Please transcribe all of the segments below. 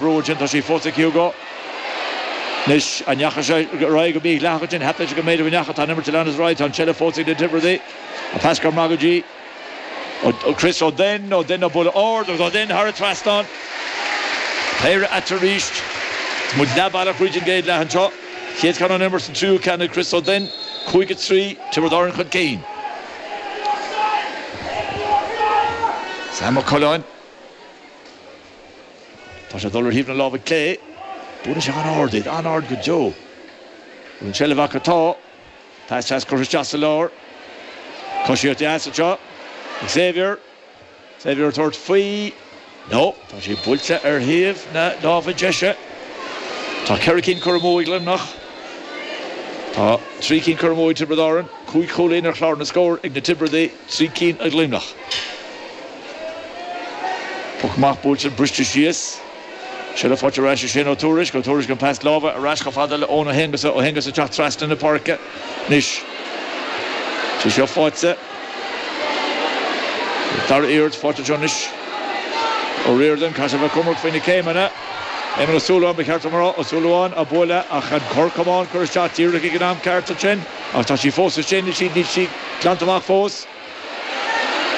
bród sin, tá sí fós ag Hugo. Anois, an ndeachaigh sé ar aghaidh go mídhleathach ansin? Breathnaíonn sé go mb'fhéidir go ndeachaigh. Tá an imirt ag leanacht ar aghaidh. Tá an tseilbh fós ag na Tiobradaigh. An pas go maith go dtí Chris Ó Doinn. Ó Doinn, an buille ard agus Ó Doinn thar an trasnán. Péire ann arís. Muid leath bealach thríd an gcéad leath anseo. Chéad cheann ón imirt is an tríú ceann ag Chris Ó Doinn. Cúig a trí, Tiobraid Árann chun cinn. Sam Ó Coileáin. Tá sé ag dul ar thaobh na láimhe clé. Buaileann sé an-ard í, an-ard go deo. Bhfuil an tseilbh acu? Tá. Pas deas curtha isteach sa lár. Coisíocht dheas anseo ag Xavier. Xavier ag tabhairt faoi. No. Tá sé buailte ar thaobh na láimhe deise. Tá ceithre cinn curtha amú ag Luimneach. Tá trí cinn curtha amú ag Tiobraid Árann. Cúig chúilín ar chlár na scór ag na Tiobradaigh. Trí cinn ag Luimneach. Poc maith buailte briste síos. Sí le fáil ar ais ansin ó Tuairisc. Ó Tuairisc an pas láimhe ar ais chomh fada le Eoin Ó hAonghusa. Ó hAonghusa teacht trasna na páirce anois. Sí seo le fáil. Dara iarracht le fáil anseo anois. Ó Riordain, Cathal Mac Cormac faoi na céimeanna. Éamonn Ó Súilleabháin ba cheart dom a rá. Ó Súilleabháin á bualadh ach an corr camán curtha isteach díreach ag an am ceart ansin. Ach tá sí fós ansin, is níl sí glanta amach fós.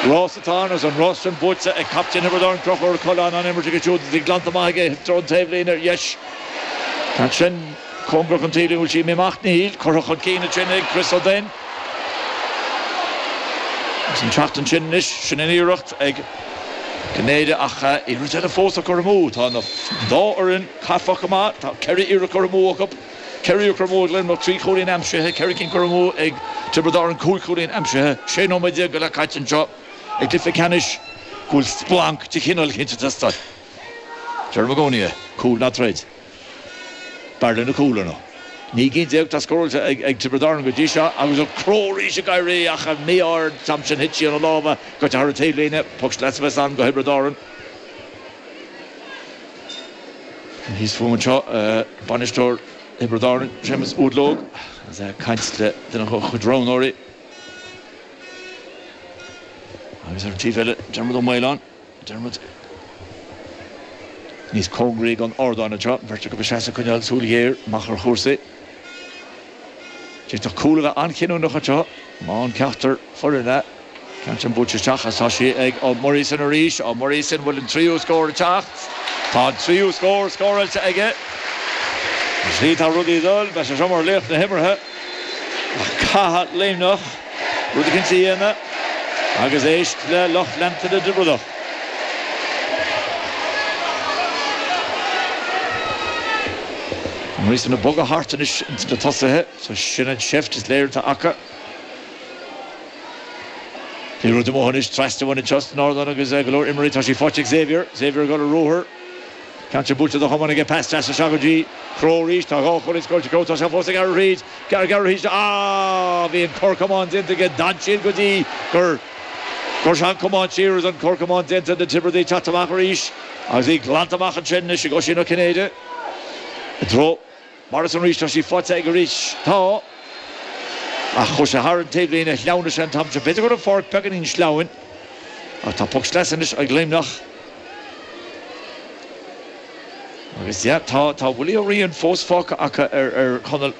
Rás atá ann, agus an rás sin buaite ag captaen Thiobraid Árann, Conchúr Coileáin, an imirt aige siúd tá glanta amach aige i dtreo an taobhlíne ar dheis. Ansin, cóngarach don taobhlíne, bhfuil sí imithe amach, níl, curtha chun cinn ansin ag Chris Ó Doinn. Agus ag teacht ansin anois, sin an iarracht ag Néide, ach iarracht eile fós á cur amú. Tá an dá fhoireann caifeach go maith, tá ceithre iarracht curtha amú ag. 4 curtha amú ag Luimneach, 3 chúilín aimsithe, 4 cinn curtha amú ag Tiobraid Árann, 5 chúilín aimsithe 16 nóiméad go leith caite anseo ag cluiche ceannais go bhfuil splanc de chineál éicint ag teastáil. Ger Magonia, cúl ná troid. B'fhearr linn cúl, ar ndóigh. 19 gcinn atá scóráilte ag Tiobraid Árann go dtí seo agus an crobh arís ag éirí ach an mí-ádh an t-am sin thit sí óna lámha, caite thar an taobhlíne, poc sleasa a bheas ann go Thiobraid Árann. Thíos fúm anseo, bainisteoir Thiobraid Árann, Séamus Ua Dlóg, agus é ag caint le duine dá chuid roghnóirí. Agus ar an taobh eile, Diarmuid Ó Maoláin, Diarmuid níos cóngaraí don ardán anseo, an bheirt acu ag seasamh ag coinneáil súil ghéar amach ar chúrsaí. D'fhéadfadh cúl a bheith an-chinniúnach anseo. Má fhaigheann ceachtar foireann an ceann sin buailte isteach agus tá sí ag Ó Muireasáin arís. Ó Muireasáin, bhfuil an tríú scór ag teacht? Tá an tríú scór scóráilte aige. Is faoi atá rudaí ag dul, beidh sé seo mar laoch na himeartha. Ach caithfidh Luimneach. Rud éicint a dhéanamh, agus éist le lucht leanta na dTiobradach. Morrison ag bogadh thart anois ins na tosaithe? Sea, sin an tseift is léir atá acu. Pé rud amuigh anois trasna uainn anseo ón ardán agus go leor imreoirí tá sí faighte ag Xavier. Xavier ag dul ar ruathar. Ceann sin buailte de chamán aige pas deas as seo go dtí Crowe arís. Tá dhá chúilín scóráilte Crowe. Tá sé fós ag gearradh thríd. Ag gearradh thríd seo. Ahh bhí an cor camáin déanta aige. D'fhan siad go dtí gur chuir sé an camán siar agus an cor camáin déanta. Na Tiobradaigh ag teacht amach arís agus í glanta amach ansin anois ag Oisín Ó Cinnéide i dtreo Morrison arís, tá sí faighte aige arís. Tá. Ach chuaigh sé thar an taobhlíne, shleamhnaigh sé an t-am sin. B'fhéidir go raibh an pháirc beagáinín sleamhain. Ach tá poc sleasa anois ag Luimneach. Agus yeah, tá, tá Willie Ó Riain fós fágtha acu ar, ar Chonall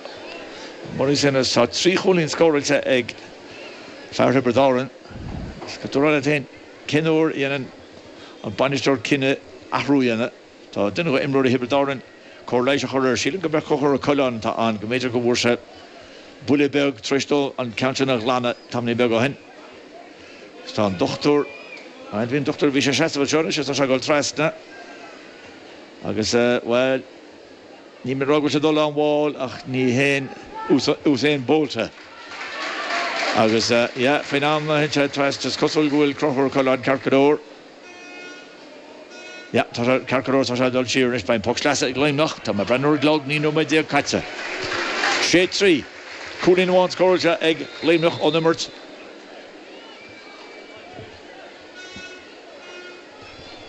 Morrison agus tá trí chúilín scóráilte ag fear Thiobraid Árann. Agus déarfá leat féin, cén uair a dhéanann an bainisteoir cinneadh athrú a dhéanamh? Tá duine de imreoirí Thiobraid Árann cóir leighis á chur air. Sílim gurb é Conchúr Ó Coileáin atá ann, go mb'fhéidir go bhfuair sé buille beag tar éis dó an ceann sin a ghlanadh tamaillín beag ó shin. Agus tá an dochtúir, aye, bhí an dochtúir, bhí sé ag seasamh anseo anois agus tá sé ag dul trasna agus, bhuel, níl mé ag rá go bhfuil sé ag dul an-mhall ach ní haon Usain Bolt é. Agus, yeah, faoin am a théann sé trasna is cosúil go bhfuil Conchúr Ó Coileáin ceart go leor. Yeah, tá sé, ceart go leor, tá sé ag dul siar anois, beidh an poc sleasa ag Luimneach, tá mé ag breathnú ar an gclog, naoi nóiméad déag caite. Sé, trí. Cúilín amháin scóráilte ag Luimneach ón imirt.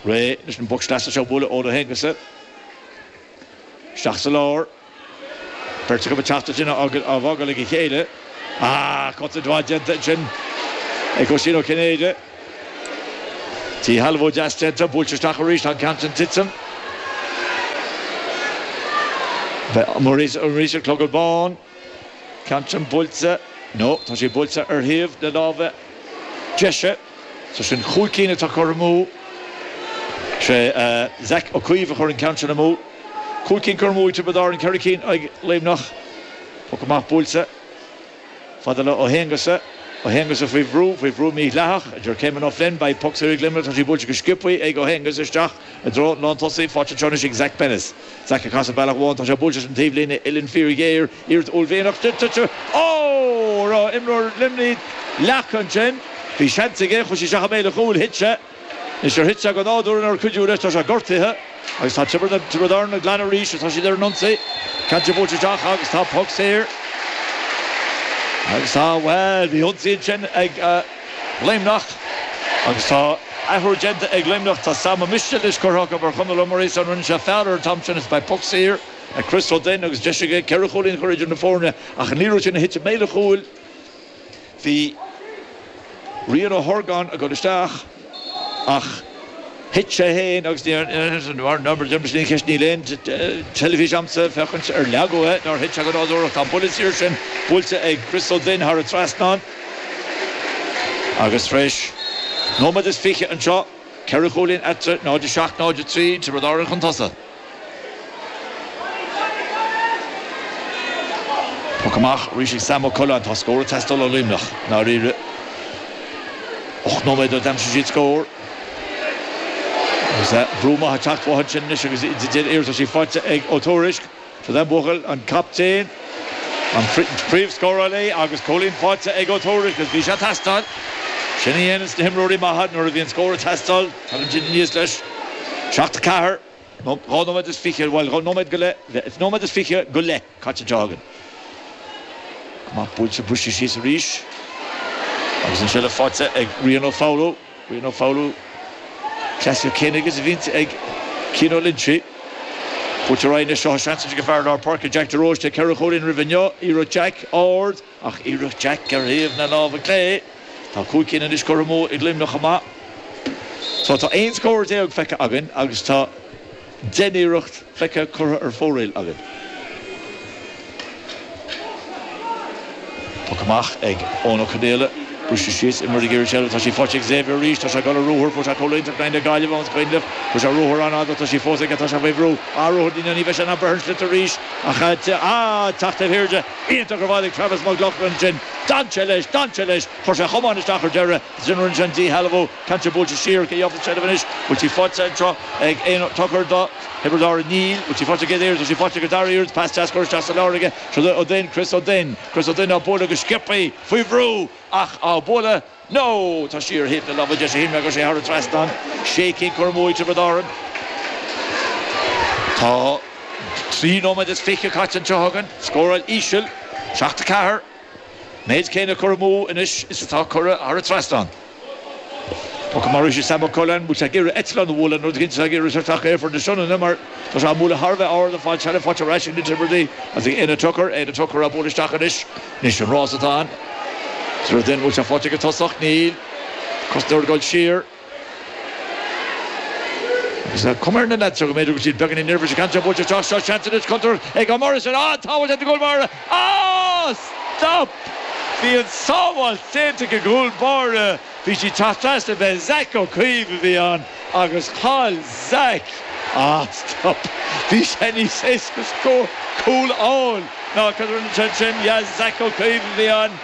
Réidh leis an bpoc sleasa seo, buaileann Ó hAonghusa isteach sa lár. Beirt acu ag teacht ansin á fágáil ag a chéile. Ah, cosaint mhaith déanta ansin ag Oisín Ó Cinnéide. Díshealbhú deas déanta, buailte isteach arís, tá an ceann sin tite. Morrison clogad bán, ceann sin buailte, no, tá sé buailte ar thaobh na láimhe deise. So sin cúig cinn atá curtha amú. Sé Zach Ó Caoimh a chuir an ceann sin amú. Cúig cinn curtha amú ag Tiobraid Árann, ceithre cinn ag Luimneach. Poc amach buailte. Fad le Ó hAonghusa. Ó hAonghusa faoi bhrú, faoi bhrú mídhleathach, a deir Caymon Ó Floinn. Beidh poc saor ag Luimneach, tá sí buailte go sciobtha ag Ó hAonghusa isteach i dtreo an lántosaí. Faighte anseo anois ag Zach Bennis. Zach ag casadh bealach amháin, tá sé buailte leis an taobhlíne uillinn fíorghéar. Níor uaillmhianach duit an triail a rinne imreoir Luimnigh leac ansin. Bhí seans aige, chuir sé isteach i mbéal an chúil, thit sé. Anois ar thit sé go nádúrtha nó ar cuidíodh leis, tá sé gortaithe agus tá Tiobraid Árann ag glanadh arís agus tá siad ar an ionsaí. Ceann sé buailte isteach agus tá poc saor agus tá, bhuel, bhí ionsaí ansin ag Luimneach agus tá athrú déanta ag Luimneach. Tá Sam Mistéil anois curtha acu ar Chonall Ó Muirí, so rinne sé feall air an t-am sin agus beidh poc saor. Ag Chris Ó Duinn agus deis aige ceithre chúilín a chur idir na foirne ach ní raibh sé ina shuite i mbéal an chúil. Bhí Rian Ó hOrgáin ag dul isteach ach thit sé féin agus ní raibh an deis aige an cheist Níl aon teilifís agamsa féachaint ar leagadh é nó ar thit sé go nádúrtha. Tá an buille saor sin buailte ag Chris Ó Duinn thar an trasnán agus tar éis nóiméad is fiche anseo, ceithre chúilín eatarthu, 0:07, 0:03, Tiobraid Árann chun tosaigh. Poc amach arís ag Sam Ó Cuirreáin. Tá scór ag teastáil ó Luimneach i ndáiríre. Ocht nóiméad ó d'aimsigh siad scór. Agus brú maith ag teacht uathu ansin anois agus iad ar iarratas. Í faighte ag Ó Tuairisg. Seod é an buachaill, an captaen, an príomhscórálaí agus cúilín faighte ag Ó Tuairisg agus bhí sé ag teastáil. Sin a dhéanann na himreoirí maithe nuair a bhíonn scór ag teastáil. Tagann siad aníos leis. 7 4 nó 2 nóiméad is fiche, bhuel, dhá nóiméad go leith, leith, nóiméad is fiche go leith caite anseo againn. Amach buailte, briseadh síos arís agus an seilbh faighte ag Rian Ó Foghlú. Rian Ó Foghlú, cleasaíocht chéanna aige is a bhíonn ag Cian Ó Loinsigh. Buailte ar aghaidh anois, seo seans anois ag fear lár páirce, Jack de Róiste, ceithre chúilín roimhe inniu, iarracht Jack ard, Ach iarracht Jack ar thaobh na láimhe clé. Tá cúig cinn anois curtha amú ag Luimneach chomh maith. So tá aon scór déag feicthe againn agus tá deich n-iarracht feicthe curtha ar fóraoil againn. Poc amach ag Eoin Ó Conaola. Briseadh síos, imreoirí ag iarraidh seilbh, tá sí faighte ag Xavier arís, tá sé ag dul ar ruathar, fuair sé cúl iontach in aghaidh na Gaillimhe ón scoinlamh, fuair sé ruathar an-fhada, tá sí fós aige, tá sé faoi bhrú, ah ruathar, ní bheidh sé in ann breith ar an sliotar arís ach ah teacht taobh thiar de. Iontach gur bhailigh Travis Mac Lochlainn sin. D'fhan sé leis! D'fhan sé leis! Chuir sé a chamán isteach ar deireadh agus sin rinne sé an díshealbhú. Cainteoir buailte siar, cé gheofar seilbh anois? Bhfuil sí faighte anseo ag aon tochar do Thiobraid Árann? Níl. Bhfuil sí faighte ag aon oiread? Tá sí faighte ar an dara iarracht. Pas deas, curtha isteach sa lár aige. Seod é Ó Duinn, Chris Ó Duinn. Chris Ó Duinn á bualadh go sciobthaí faoi bhrú ach á bualadh. No! Tá sí ar thaobh na láimhe deise Shinra agus é thar an trasnán. Sé cinn curtha amú ag Tiobraid Árann. Tá trí nóiméad is fiche caite anseo againn. Scóráil íseal, seacht a ceathair. Méid céine cur amú anois is atá curtha thar an trasnán. Poc amach arís ag Sam Mac Colaim. Bhfuil sé ag iarraidh eitleán a bhualadh? An rud is cinnte tá ag iarraidh seirfeach ar Aerfort na Sionainne mar tá sé á mbualadh thar a bheith ard. An fad seilbh faighte ar ais ag na Tiobradaigh agus ag Éanna Tucker. Éanna Tucker á bualadh isteach anois. Anois an rás atá ann. Is rud é an bhfuil sé faighte ag an tosach. Níl. Cosnóir ag dul siar. Agus tá cuma ar na leaids seo go mb'fhéidir go bhfuil siad beagáinín neirbhíseach. Ceann seo buailte isteach? Seo seans anois. Contúirt ag an mbarr sin. An-sábháil ag an gcúl báire. Á! Stop! Bhí an tsábháil déanta ag an gcúl báire. Bhí sí traochta as a bheith Zach Ó Caoimh a bhí ann agus chaill Zach Ah, stop! Bhí sé níos éasca scór cúl a fháil ná cad a rinne sé ansin Yeah, Zach Ó Caoimh a bhí ann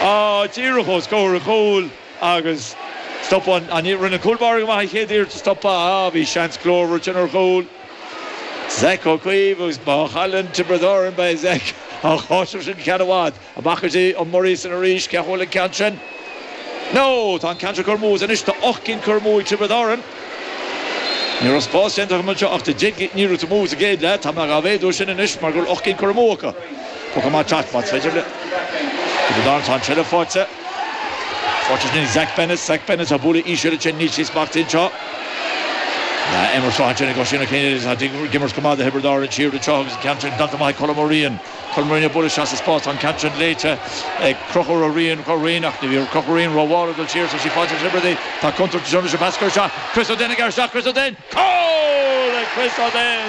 ah díreach os comhair an chúil agus stop an an rinne an cúl báire go maith an chéad iarracht a stop Ah, bhí seans glórmhar ansin ar chúl Zach Ó Caoimh agus má chailleann Tiobraid Árann beidh Zach á cháiseamh sin go ceann i bhfad. McCarthy, Ó Muirí san arís, cé a chuala an ceann sin? No! Tá an ceann seo curtha amú as anois, tá ocht gcinn curtha amú ag Tiobraid Árann. Ní raibh spás déanta agam anseo ach de dheidh ní raibh to move sa gcéad leath, tá mé dhá mhéadú as sin anois mar go bhfuil ocht gcinn curtha amú acu. Poc amach ag teacht, más féidir le Tiobraid Árann, tá an tseilbh faighte. Faighte ansin ag Zach Bennett, Zach Bennett á bualadh íseal ansin, níl sí smachtaithe anseo. Tá Emer Sráith ansin ag Oisín Ó Céin, tá ag imirt go maith do Thiobraid Árann siar anseo agus an ceann sin glanta maith ag Colm Ó Riain. Chuir Marina buaileas as a spás an ceantrain léite ag crochadh ro rian ro rian ach ní bhíodh crochadh rian ro mhárach dul siar so sí fáilte Sibir di. Tá Contar de Jonas a mheascadh ar seo. Chris O'Dea ag éisteacht Chris O'Dea! Call ag Chris O'Dea!